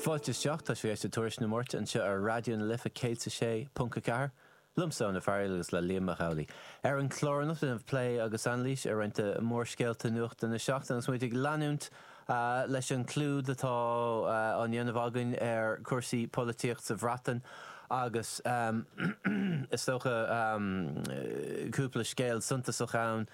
Fáilte isteach, tá sibh ag éisteacht Tuairisc na Márta anseo ar Raidió na Life 106.4, liomsa Ó Fearaíl agus le Liam Mac Amhlaigh. Ar an chlár anocht déanamh plé agus anailís ar roinnt de mhórscéalta nuachta na seachtaine agus muid ag leanúint leis an gclúid atá á ndéanamh againn ar chúrsaí polaitíochta sa Bhreatain agus is dócha cúpla scéal suntasach ann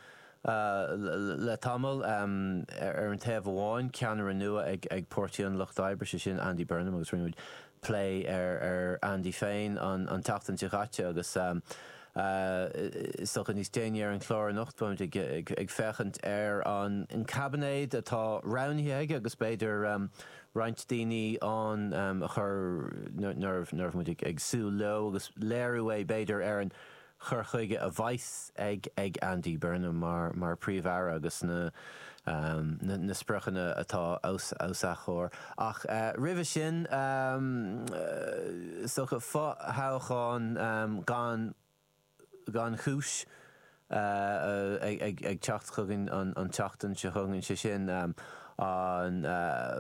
le tamall. Ar an taobh amháin, ceannaire nua ag Páirtí an Lucht Oibre, sé sin Andy Burnham agus rinne muid plé ar Andy féin an tseachtain seo chaite agus is dócha níos déanaí ar an chlár anocht, beimid ag féachaint ar an gcaibinéad atá roghnaithe aige agus b'fhéidir roinnt daoine ann nach raibh muid ag súil leo agus léiriú iad b'fhéidir ar an chur chuige a bheas ag Andy Burnham mar Phríomh-Aire agus na spriocanna atá os a chomhair. Ach roimhe sin, is dócha fo-thoghchán gan chúis ag teacht chugainn an tseachtain seo chugainn, sé sin an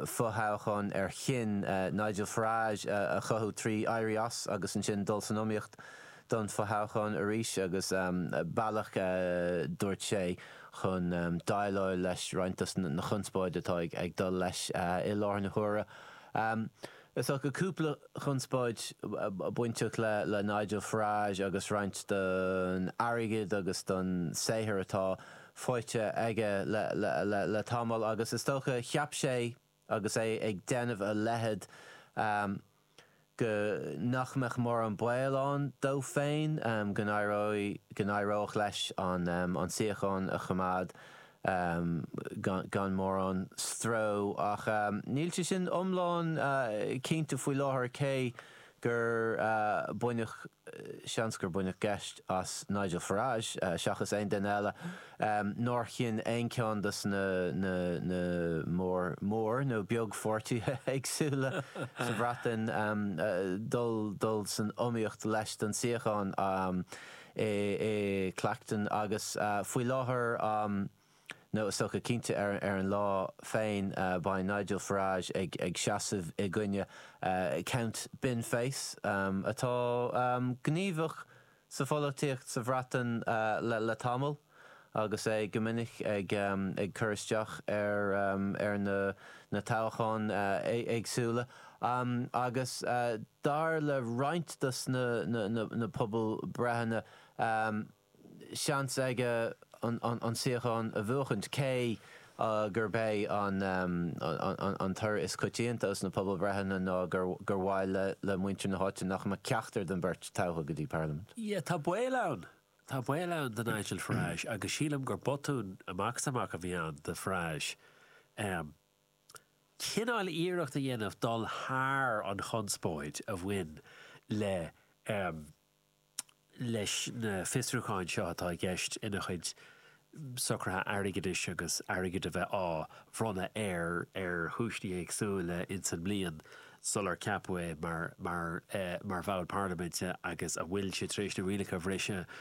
fo-thoghchán ar chinn Nigel Farage a chothú trí éirí as agus ansin dul san iomaíocht don fothoghchán arís agus bealach a dúirt sé chun déileáil leis roinnt de na chonspóid atá ag dul leis i láthair na huaire. Is dócha cúpla conspóid bainteach le Nigel Farage agus roinnt den airgead agus den saothar atá faighte aige le tamall agus is dócha cheap sé agus é ag déanamh a leithéid, go nach mbeadh mórán baol ann dó féin go n-éireodh leis an suíochán a choimeád gan mórán stró. Ach níl sé sin iomlán cinnte faoi láthair, cé gur baineadh, seans gur baineadh geit as Nigel Farage seachas aon duine eile nár chinn aon cheann de na mór mór nó beag pháirtithe éagsúla sa Bhreatain dul san iomaíocht leis don suíochán i Clacton agus faoi láthair Nó is dócha cinnte ar an lá féin beidh Nigel Farage ag seasamh i gcoinne Count Binface, atá gníomhach sa pholaitíocht sa Bhreatain le tamall agus é go minic ag cur isteach ar na toghcháin éagsúla. Agus dar le roinnt dos na pobalbhreitheanna, seans aige an tsíocháin a bhuachaint, cé gurb é an toradh is coitianta insna pobalbhreitheanna ná gur mhaith le muintir na háite nach mbeadh ceachtar den bheirt tofa go dtí Parlaimint. Sea, tá baol ann. Tá baol ann do Nigel Farage, agus sílim gur botún amach is amach a bhí ann do Farage cineál iarracht a dhéanamh dul thar an chonspóid a bhain le leis na fiosrúcháin seo atá i gceist ina chuid socruithe airgeadais agus airgead a bheith á bhronnadh air ar chúinsí éagsúla ins an mbliain sular ceapadh é mar bhall parlaiminte agus an bhfuil sé tar éis na rialacha a bhriseadh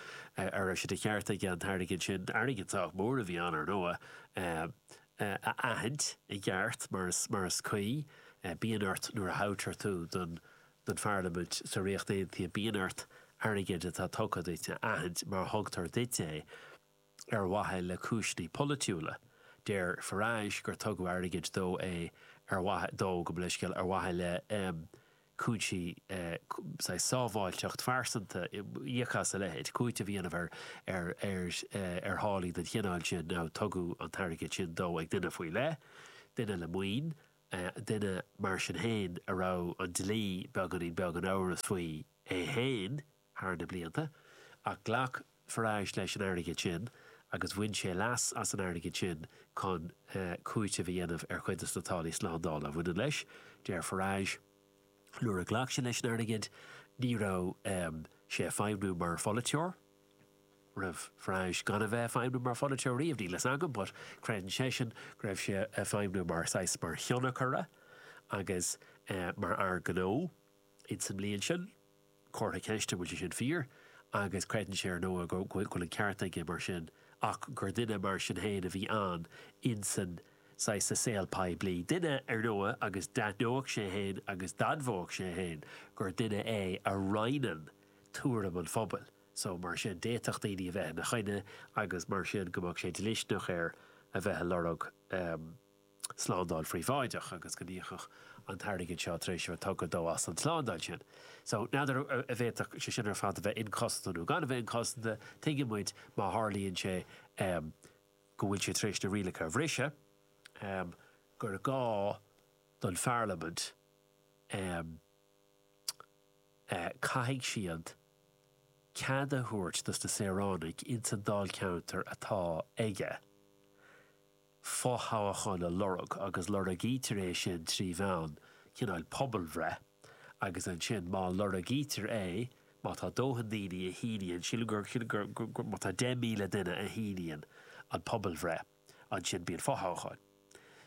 an raibh sé de cheart aige an t-airgead sin, airgead sách mór a bhí ann, ar ndóigh, a aithint i gceart mar is cuí. Bíonn ort nuair a thoghtar tú don don Pharlaimint sa Ríocht Aontaithe bíonn ort airgead atá tugtha duit a aithint má thugtar duit é ar mhaithe le cúiseanna polaitiúla. Deir Farage gur tugadh airgead dó é ar mhaithe dó gabh mo leithscéal ar mhaithe le cúinsí saghas sábháilteacht phearsanta, íoc as a leithéid cúiteamh a dhéanamh ar ar ar ar tháillí den chineál sin ó tugadh an t-airgead sin dó ag duine faoi leith, duine le maoin. duine mar sin féin a raibh an dlí beagáinín beag in amhras faoi é féin thar na blianta, ach ghlac Farage leis an airgead sin agus bhain sé leas as an airgead sin chun cúiteamh a dhéanamh ar chuid de na táillí slándála a bhaineann leis. Deir Farage, Nuair a ghlac sé leis an airgead, ní raibh sé ag feidhmiú mar pholaiteoir. raibh Farage gan a bheith ag feidhmiú mar pholaiteoir riamh, níl a fhios agam, but creideann seisean go raibh sé ag feidhmiú mar saghas, mar thionchaire agus mar fhear gnó in sa mbliain sin. Comhartha ceiste an bhfuil sé sin fíor agus creideann sé, ar ndóigh, go bhfuil an ceart aige mar sin ach gur duine mar sin féin a bhí ann in san saghas, sa saol poiblí. Duine, ar ndóigh, agus d'aithneodh sé féin agus d'admhódh sé féin gur duine é a roinneann tuairim an phobail so, mar sin, d'fhéadfadh daoine a bheith ina choinne agus mar sin go mbeadh sé dlisteanach air a bheith ag lorg slándáil phríobháideach agus go n-íocfadh an t-airgead seo tar éis a bheith tugtha dó as an tslándáil sin. So, n'fheadar an bhféadfadh sé sin ar fad a bheith inchosanta nó gan a bheith inchosanta, tuigeann muid má tharlaíonn sé go bhfuil sé tar éis na rialacha a bhriseadh gur gá don pharlaimint a. caithfidh siad cead a thabhairt dos na saoránaigh ins an dáilcheantar atá aige fo-thoghachán a lorg agus lorgaítear é sin trí mheán cineál pobalbhreith agus ansin má lorgaítear é, má tá dóthain daoine a shíníonn, sílim gur, sílim gur, má tá 10,000 duine a shíníonn an pobalbhreith ansin bíonn fo-thoghachán.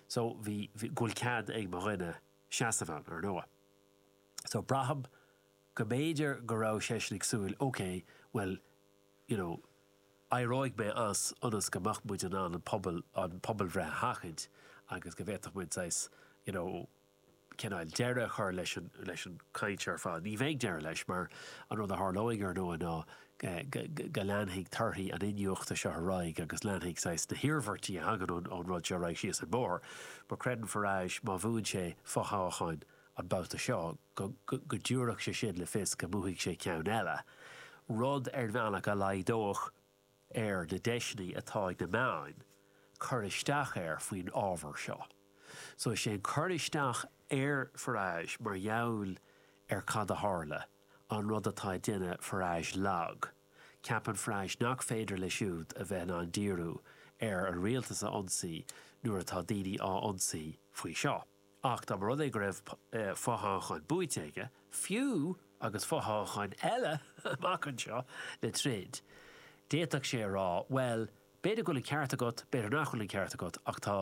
So bhí, bhí, go bhfuil cead ag mo dhuine seasamh ann, ar ndóigh. So, braithim go mb'fhéidir go raibh seisean ag súil, OK, bhuel, you know, éireoidh mé as ionas go mbeadh muid in ann an pobal, an pobalbhreith a sheachaint agus go bhféadfadh muid saghas, you know, cineál deireadh a chur leis an, leis an gcaint ar fad. Ní bheidh deireadh leis mar an rud a tharlóidh, ar ndóigh, ná, go leanfaidh torthaí an iniúchta seo ar aghaidh agus leanfaidh saghas na hiarmhairtí a thagann ón rud seo ar aghaidh síos an bóthar. But creideann Farage, má bhuann sé fo-thoghachán an babhta seo, go dtabharfadh sé sin le fios go mbuafaidh sé ceann eile, rud ar bhealach a laghdódh ar na deiseanna atá ag na meáin cur isteach air faoin ábhar seo. So is é an cur isteach ar Farage mar gheall ar cad a tharla an rud atá ag déanamh Farage lag. Ceapann Farage nach féidir leis siúd a bheith in ann díriú ar an rialtas a ionsaí nuair atá daoine á ionsaí faoi seo. Ach dá mba rud é go raibh fothoghchán buaite aige, fiú agus fothoghchán eile amach anseo le troid, d'fhéadfadh sé a rá, bhuel, b'fhéidir go bhfuil an ceart agat, b'fhéidir nach bhfuil an ceart agat, ach tá.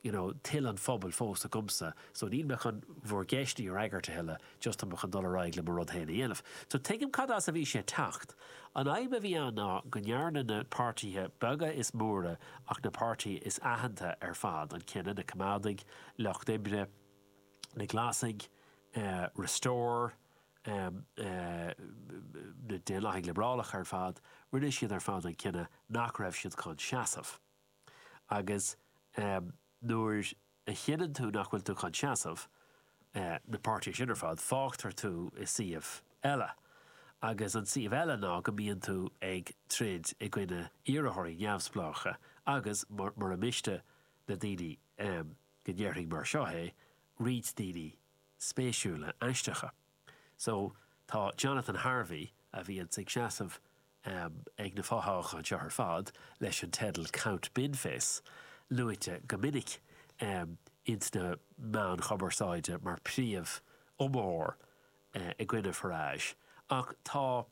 you know toil an phobail fós agamsa so níl mé chun bhur gceisteanna a fhreagairt a thuilleadh, just tá mé chun dul ar aghaidh le mo rud féin a dhéanamh. So tuigim cad as a bhí sé ag teacht. An fhadhb a bhí ann ná go ndearna na páirtithe beaga is móra ach na páirtithe is aitheanta ar fad an cinneadh, na Coimeádaigh, Lucht Oibre, na Glasaigh, Restore, na Daonlathaigh Liobrálacha ar fad, rinne siad ar fad an cinneadh nach raibh siad chun seasamh. Agus nuair a chinneann tú nach bhfuil tú chun seasamh na páirtithe sin ar fad, fágtar tú i suíomh eile. Agus an suíomh eile ná go mbíonn tú ag troid i gcoinne iarrthóirí neamhspleácha agus, mura miste le daoine go ndéarfainn mar seo é, roinnt daoine spéisiúla aisteacha. So, tá Jonathan Harvey, a bhíonns ag seasamh ag na fothoghcháin seo ar fad leis an teideal Count Binface, luaite go minic ins na meáin chumarsáide mar príomhiomaitheoir i gcoinne Farage, ach tá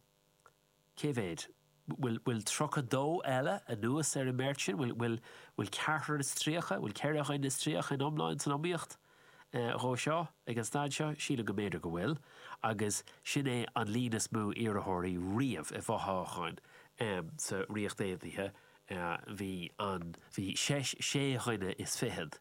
Cé mhéad? Bhfuil tríocha dó eile anuas ar an mbeirt sin? Bhfuil ceathrar is tríocha? Bhfuil ceithre dhuine is tríocha in iomlán san iomaíocht dhó seo ag an staid seo? Sílim go mb'fhéidir go bhfuil agus sin é an líon is mó iarrthóirí riamh i bhfothoghchán sa Ríocht Aontaithe. Bhí sé dhuine is fichead.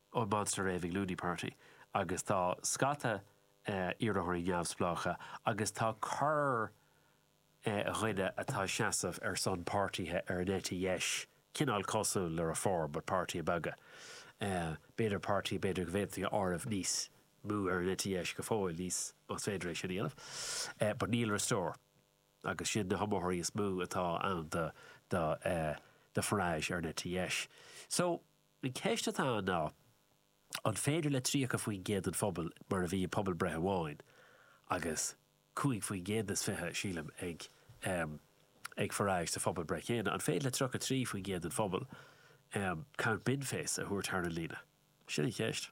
ón Monster Raving Loony Party agus tá scata iarrthóirí neamhspleácha agus tá corrdhuine atá ag seasamh ar son páirtithe ar an eite dheis, cineál cosúil le Reform but páirtithe beaga, b'fhéidir páirtithe b'fhéidir go bhféadfaí a áireamh níos mó ar an eite dheis go fóill, níos, más féidir é sin a dhéanamh, but níl Restore agus sin na hiomaitheoirí is mó atá ann do Farage ar an eite dheis. So. An cheist atá ann ná, an féidir le 30% den phobal, mar a bhí i bpobalbhreith amháin, agus 5% is fiche, sílim, ag ag Farage sa phobalbhreith chéanna, an féidir le 33% den phobal Count Binface a thabhairt thar an líne? Sin an cheist.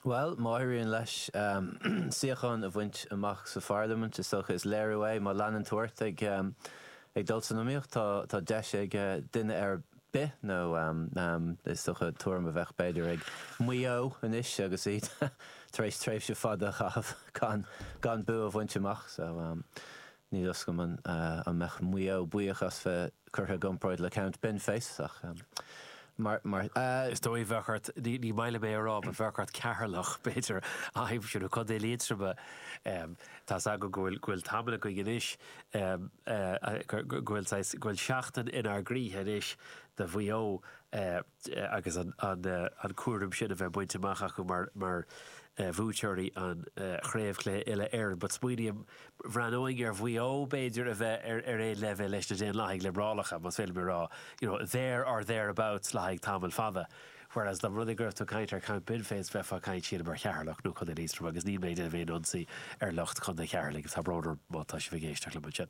Bhuel, má éiríonn leis suíochán a bhaint amach sa pharlaimint, is dócha, is léiriú é, má leanann tú ort ag dul san iomaíocht, tá deis ag duine ar bith, nó is dócha, tuairim a bheadh b'fhéidir ag Maigh Eo anois agus iad tar éis tréimhse fada a chaitheamh gan bua a bhaint amach. Níl a fhios agam an mbeadh Maigh Eo buíoch as bheith curtha i gcomparáid le Count Binface ach mar. Is dóigh, bheadh ort, ní maith liom é a rá, but bheadh ort Ceatharlach, b'fhéidir, a aimsiú, nó Contae Liatroma. Tá's agam go bhfuil tamall ó shin anois go bhfuil seachtain inár gcroíthe anois do Mhaigh Eo. agus an cúram sin a bheith bainte amach acu mar bhuaiteoirí an Chraobhchluiche Uile-Éireann. But smaoiním, bhreathnóinn ar Mhaigh Eo b'fhéidir a bheith ar aon leibhéal leis na Daonlathaigh Liobrálacha, más féidir liom a rá, you know, there or thereabouts le haghaidh tamall fada. Whereas dá mba rud é go raibh tú ag caint ar Count Binface bheifeá ag caint sílim ar Cheatharlach nó Contae Liatroma agus níl mé ag déanamh aon ionsaí ar lucht Chontae Cheatharlaigh, tá brón orm má tá sibh ag éisteacht liom ansin.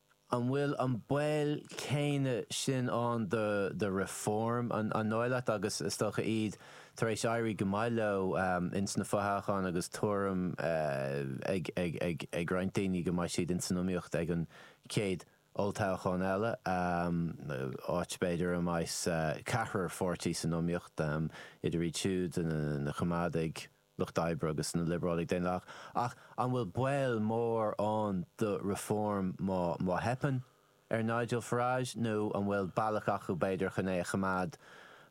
An bhfuil an baol céanna sin ann do Reform? An dóigh leat, agus is dócha, iad tar éis éirí go maith leo ins na fothoghcháin agus tuairim ag roinnt daoine go mbeidh siad ins an iomaíocht ag an chéad olltoghchán eile, áit, b'fhéidir, a mbeas ceathar pháirtí san iomaíocht, idir iad siúd, na Coimeádaigh, Lucht Oibre agus na Liobrálaigh Daonlathach, ach an bhfuil baol mór ann do Reform má theipeann ar Nigel Farage, nó an bhfuil bealach acu, b'fhéidir, chun é a choimeád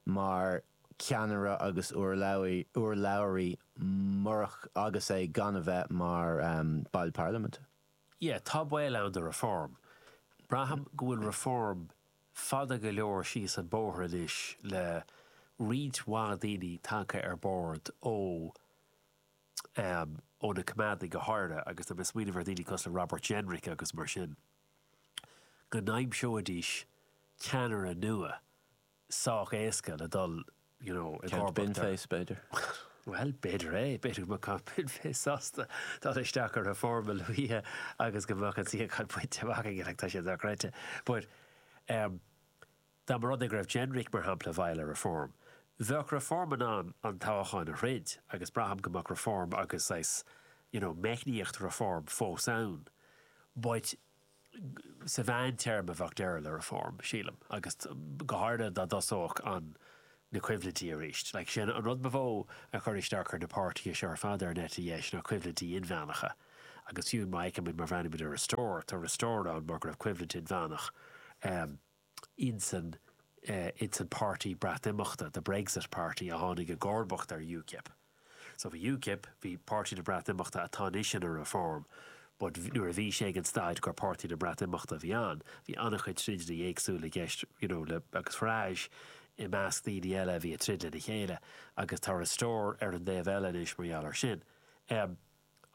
mar cheannaire agus urlabhraí fiú agus é gan a bheith mar Ball Parlaiminte? Yeah, tá baol ann do Reform. Braithim go bhfuil Reform fada go leor síos an bóthar anois le roinnt mhaith daoine tagtha ar bord ó ó na coimeádaigh go háirithe agus tá mé ag smaoineamh ar dhaoine cosúil le Robert Jenrick agus mar sin go n-aimseoidís ceannaire nua sách éasca le dul you know, i gcomharbacht ar. Count Binface, b'fhéidir. Bhuel, b'fhéidir é. B'fhéidir go mbeadh Count Binface sásta dul isteach i Reform a luaithe agus go mbeadh an suíochán bainte amach aige, like, tá sé dochreidte. But, um, dá mba rud é go raibh Jenrick, mar shampla, i bhfeighil ar Reform, bheadh Reform in ann an toghachán a throid agus braithim go mbeadh Reform agus, saghas, you know, meicníocht Reform fós ann. But, Sa mheántéarma bheadh deireadh le Reform, sílim, agus go háirithe dá dtosódh an na coimhlintí arís. Sé an rud ba mhó a chuir isteach ar na páirtithe seo ar fad ar an eite dheis ná coimhlintí inmheánacha, agus fiú má fheicimid má bhreathnaímid ar Restore, tá Restore ann mar go raibh coimhlint inmheánach ann. insan insan páirtí Breatnimeachta, the Brexit Party, a tháinig i gcomharbacht ar UKIP. So bhí UKIP, bhí Páirtí na Breatnimeachta atá anois ina Reform, but nuair a bhí sé ag an staid gur Páirtí na Breatnimeachta a bhí ann, bhí an-chuid troideannaí éagsúla i gceist, you know, le, agus Farage i measc daoine eile a bhí ag troid lena chéile agus tá Restore ar an dtaobh eile anois mar gheall ar sin. An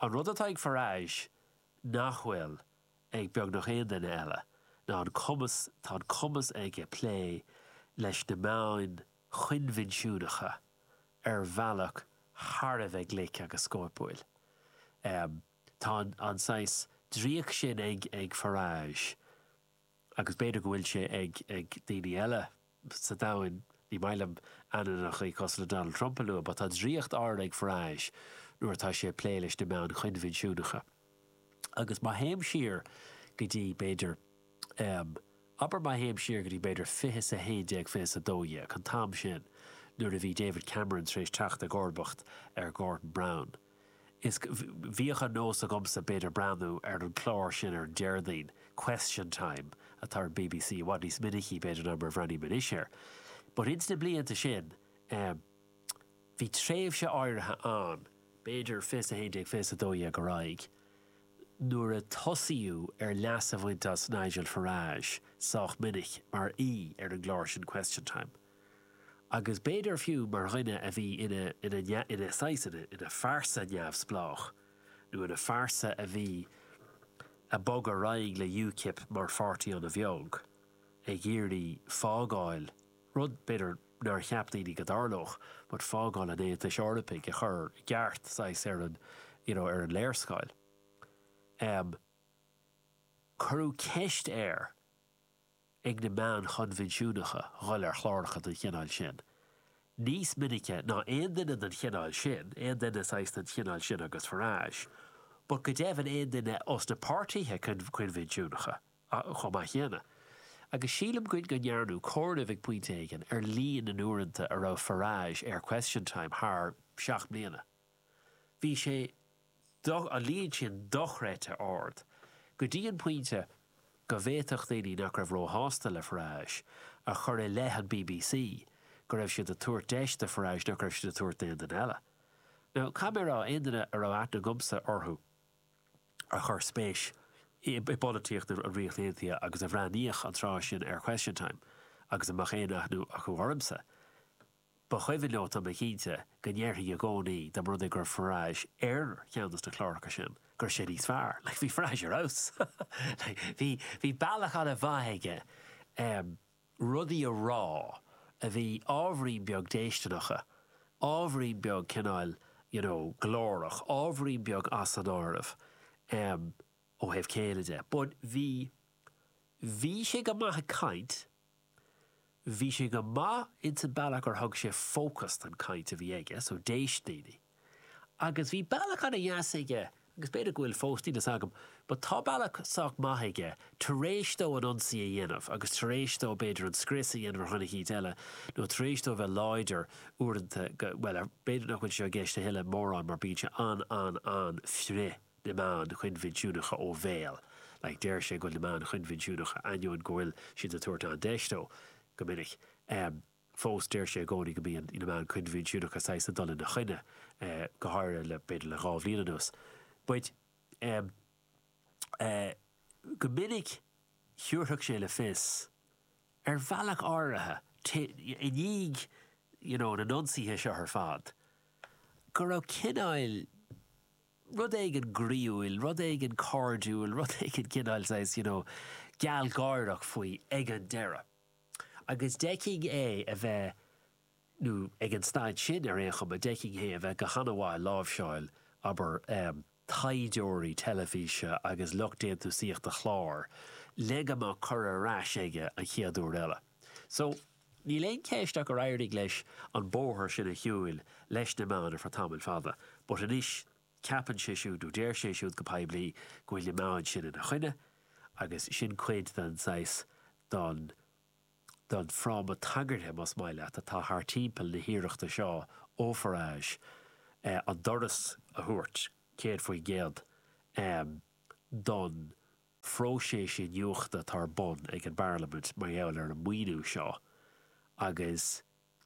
rud atá ag Farage nach bhfuil. ag beagnach aon duine eile ná an cumas tá an cumas aige plé leis na meáin choinbhinsiúnacha ar bhealach thar a bheith glic agus scóipiúil. Tá an saghas draíocht sin ag Farage. agus b'fhéidir go bhfuil sé ag daoine eile sa domhan, ní maith liom ainmneachaí cosúil le Donald Trump a lua, but tá draíocht áirid ag Farage nuair atá sé ag plé leis na meáin choinbhinsiúnacha. Agus má théim siar go dtí, b'fhéidir, em, abair má théim siar go dtí, b'fhéidir, fiche is a haon déag, fiche is a dó dhéag, an t-am sin nuair a bhí David Cameron tar éis teacht i gcomharbacht ar Gordon Brown, Is bhíodh an nós agamsa b'fhéidir breathnú ar an gclár sin ar an Déardaoin, Question Time, atá ar an bbc, i bhfad níos minicí b'fhéidir ná mar a bhreathnaím anois air. But ins na blianta sin em bhí tréimhse áirithe ann, b'fhéidir fiche is a haon déag, fiche is a dó dhéag ar aghaidh, nuair a tosaíodh ar leas a bhaint as Nigel Farage sách minic mar aoi ar an gclár sin Question Time. agus b'fhéidir fiú mar dhuine a bhí ina, ina, ina saghas, ina, ina phearsa neamhspleách, nó ina phearsa a bhí, a bhog ar aghaidh le UKIP mar pháirtí ana bheag, ag iarraidh fágáil, rud, b'fhéidir, nár cheap daoine go dtarlódh, but fágáil an Aontais Eorpaigh, a chur i gceart, saghas, ar an, you know, ar an léarscáil. Em. cuireadh ceist air. ag na meáin choinbhinsiúnacha dhul ar chláracha den chineál sin níos minicí ná aon duine den chineál sin, aon duine saghas den chineál sin agus Farage, but go deimhin aon duine ó sna páirtithe coinbhinsiúnacha chomh maith céanna. Agus sílim go ndearnadh comhaireamh ag pointe éigin ar líon na n-uaireanta a raibh Farage ar Question Time thar seacht mbliana. Bhí an líon sin dochreidte ard, go dtí an pointe go bhféadfadh daoine nach raibh róshásta le Farage a chur i leith an bbc go raibh siad ag tabhairt deis do Farage nach raibh siad ag tabhairt d'aon duine eile. Now, dá mbeadh aon duine a raibh aithne agamsa orthu a chuir spéis i bpolaitíocht na Ríochta Aontaithe agus a bhreathnaíodh an tráth sin ar Question Time agus a mbeadh aon aithne acu ormsa, Ba chuimhin leo tá mé cinnte, go ndéarfainn i gcónaí, dá mba rud é go raibh Farage ar cheann de na cláracha sin, go raibh sé níos fearr. Like, bhí Farage ar fheabhas! Like, bhí, bhí bealach ana mhaith aige, em, rudaí a rá a bhí ábhairín beag déistineach, ábhairín beag cineáil, you know, glórach, ábhairín beag as an áireamh, em, ó thaobh céille de. But bhí, bhí sé go maith ag caint, Bhí sé go maith insan bealach gur thug sé fócas don chaint a bhí aige so d'éist daoine. Agus bhí bealach ana dheas aige, agus b'fhéidir go bhfuil fós, níl fhios agam, but tá bealach sách maith aige taréis dó an ionsaí a dhéanamh agus taréis dó b'fhéidir an scrios a dhéanamh ar dhuine eicínt eile nó taréis dó bheith láidir uaireanta, bhuel, b'fhéidir nach bhfuil sé i gceist a thuilleadh mórán mar bíonn sé an-an-an-frith. na meáin choinbhinsiúnacha ó bhéal. Like deireadh sé go bhfuil na meáin choinbhinsiúnacha, ainneoin go bhfuil siad ag tabhairt an-deis dó go minic, em, fós deir sé i gcónaí go mbíonn na meáin choinbhinsiúnacha saghas ag dul ina choinne, eh, go háirithe le, b'fhéidir le dhá bhliain anuas. But, em, eh, go minic thiúrfadh sé le fios, ar bhealach áirithe, te, i ndiaidh, you know, na n-ionsaithe seo ar fad, go raibh cineáil, rud éigin groíúil, rud éigin cairdiúil, rud éigin cineál saghas, you know, gealgháireach faoi ag an deireadh. Agus d'fheicfinn é a bheith, nó ag an staid sin ar aon chuma, d'fheicfinn é a bheith go han-mhaith ag láimhseáil, abair, taighdeoirí teilifíse agus lucht déantúsaíochta clár, le go mbeadh cuireadh ar ais aige an chéad uair eile. So. Níl aon cheist ach gur éirigh leis an bóthar sin a shiúil leis na meáin ar feadh tamaill fada, ach anois ceapann sé siúd, nó deir sé siúd go poiblí, go bhfuil na meáin sin ina choinne, agus sin cuid den saghas, den, den fhráma tagartha, más maith leat, atá thart timpeall na hiarrachta seo ó Farage an doras a thabhairt, céad faoin gcéad, don. phróiseas iniúchta atá ar bun ag an bParlaimint mar gheall ar an maoiniú seo, agus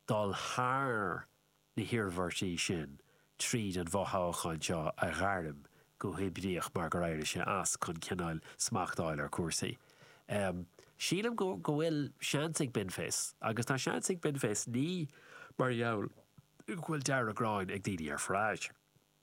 dul thar na hiarmhairtí sin tríd an bhfothoghchán seo a ghairm go hoibleach mar gur éirigh sé as, chun cineál smacht a fháil ar chúrsaí. Sílim go bhfuil seans ag Binface, agus tá seans ag Binface ní mar gheall go bhfuil deargghráin ag daoine ar Farage,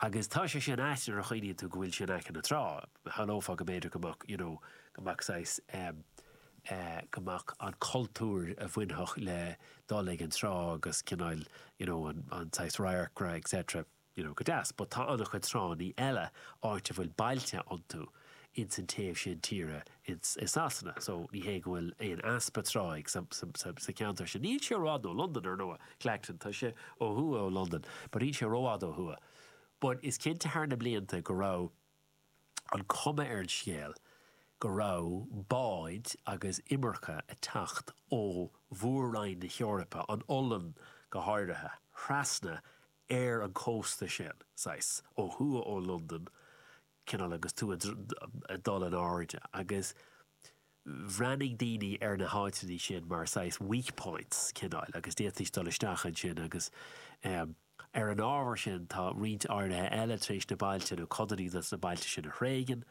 Agus tá sé sin ait nuair a chuimhníonn tú go bhfuil sé in aice na trá. Shamhlófá go mb'fhéidir go mbeadh, you know, go mbeadh saghas, eh, eh, go mbeadh an cultúr a bhainfeadh le dul ag an trá agus cineáil, you know, an, an saghas radharcra, etc, you know, go deas. But tá an-chuid tránna eile, áit a bhfuil bailte iontu. ins an taobh sin tíre ins, i Sasana so ní hé go bhfuil aon easpa trá sa cheantar sin. Níl sé i bhfad ó Londain ar ndóigh, Clacton, tá sé ó thuaidh ó Londain but níl sé rófhada ó thuaidh. But is cinnte thar na blianta go raibh an cuma ar an scéal go raibh báid agus imirce a' teacht ó mhór-roinn na hEorpa, an Ollainn go háirithe, thrasna ar an cósta sin, saghas, ó thuaidh ó Londain cineál agus tú ag dul in airde agus bhreathnaigh daoine ar na háiteanna sin mar saghas weak points cineáil agus d'fhéadfaís dul isteach ansin agus ar an ábhar sin tá roinnt áirithe eile tar éis na bailte nó codanna des na bailte sin a thréigean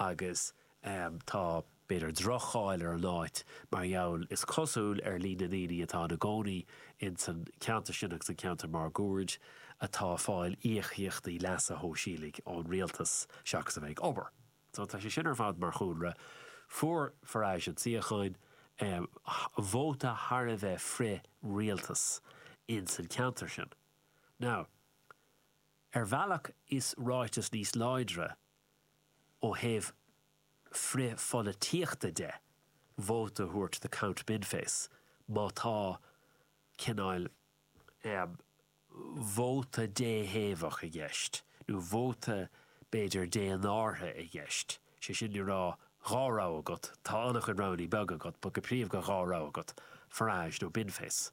agus ámh, tá, b'fhéidir, drochcháil ar an áit mar gheall, is cosúil, ar líon na ndaoine atá ina gcónaí ins an cheantar sin agus an ceantar máguaird atá ag fáil íocaíochtaí leasa shóisialaigh ón rialtas seachas a bheith ag obair. So, tá sé sin ar fad mar chúlra. Fuair Farage an suíochán, ámh, vóta thar a bheith frith-rialtas ins an cheantar sin. Now, ar bhealach is ráiteas níos láidre ó thaobh frithpholaitíochta de, vóta a thabhairt do Count Binface, má tá cineál vóta déthaobhach i gceist, nó vóta, b'fhéidir, dénártha i gceist, sé sin le rá, dhá rogha agat, tá an-chuid roghanna beaga agat, but go príomha gur dhá rogha agat, Farage nó Binface.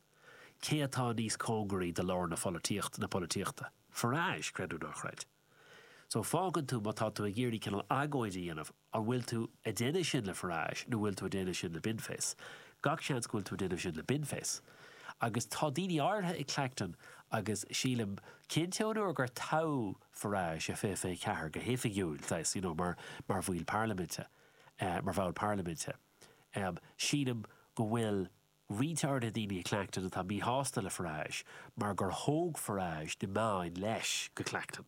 Cé atá níos cóngaraí do lár na polaitíochta? Farage, creidiúnach, chreid. So, fágann tú, má tá tú ag iarraidh cineál agóid a dhéanamh, an bhfuil tú a' déanamh sin le Farage nó bhfuil tú a' déanamh sin le Binface? Gach seans go bhfuil tú a' déanamh sin le Binface. Agus tá daoine áirithe i Clacton agus sílim, cinnte ón uair gur toghadh Farage i 2024 go hoifigiúil, saghas, you know, mar, mar bhaill parlaiminte, eh, mar bhall parlaiminte, em, sílim go bhfuil, Maítear go bhfuil daoine i Clacton atá míshásta le Farage mar gur thóg Farage na meáin leis go Clacton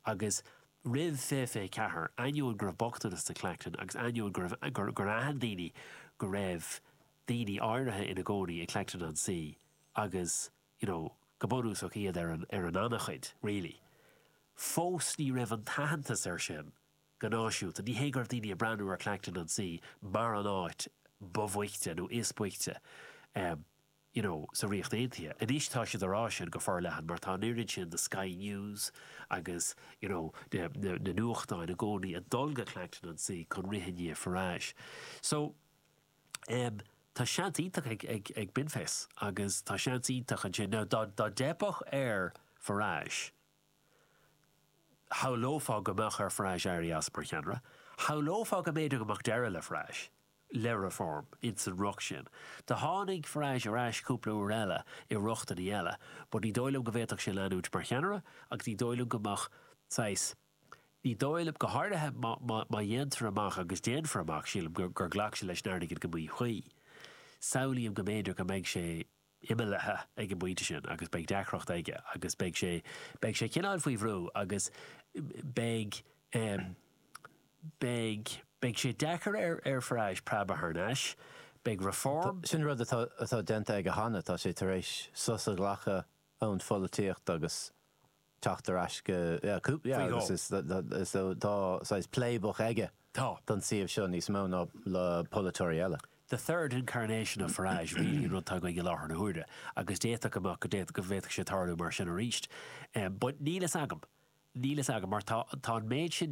agus roimh 2024, ainneoin go raibh bochtanas i Clacton agus ainneoin gur aithin daoine go raibh daoine áirithe ina gcónaí i Clacton-on-Sea agus you know go bunúsach iad ar an ngannchuid really fós ní raibh an t-aitheantas ar sin go náisiúnta. Ní hé go raibh daoine ag breathnú ar Clacton on Sea mar an áit ba bhoichte nó is boichte you know sa Ríocht Aontaithe. Anois tá siad a rá sin go forleathan mar tá an oiread sin de Sky News agus you know na nuachtáin i gcónaí ag dul go Clacton on Sea chun rith i ndiaidh Farage. So em tá seans iontach ag ag ag Binface agus tá seans iontach ansin now dá dá dteipeadh ar Farage shamhlófá go mbeadh ar Farage éirí as mar cheannaire. Shamhlófá go mb'fhéidir go mbeadh deireadh le Farage, le Reform, ins an riocht sin. Do tháinig Farage ar ais cúpla uair eile i riochtanna eile, but ní dóigh liom go bhféadfadh sé leanúint mar cheannaire agus ní dóigh liom go mbeadh saghas, ní dóigh liom, go háirithe má dhéantar amach, agus déanfar amach, sílim, gur ghlac sé leis an airgead i míchaoi, samhlaím go mb'fhéidir go mbeidh sé imeallaithe ag an bpointe sin agus beidh deacracht aige agus beidh sé, beidh sé cineál faoi bhrú agus beidh, beidh, beidh sé deacair air, ar Farage, preabadh thar n-ais. Beidh Reform. Sin rud atá, atá déanta aige cheana, tá sé tar éis sos a ghlacadh ón pholaitíocht agus. teacht ar ais go, faoi dhó. agus is dóigh, tá saghas playbook aige Tá. don suíomh seo níos mó ná le polaiteoirí eile. the third incarnation of Farage really an rud atá againn i láthair na huaire agus d'fhéadfadh go mbeadh, go bhféadfadh sé tarlú mar sin arís. But níl fhios agam. Níl fhios agam mar tá, tá an méid sin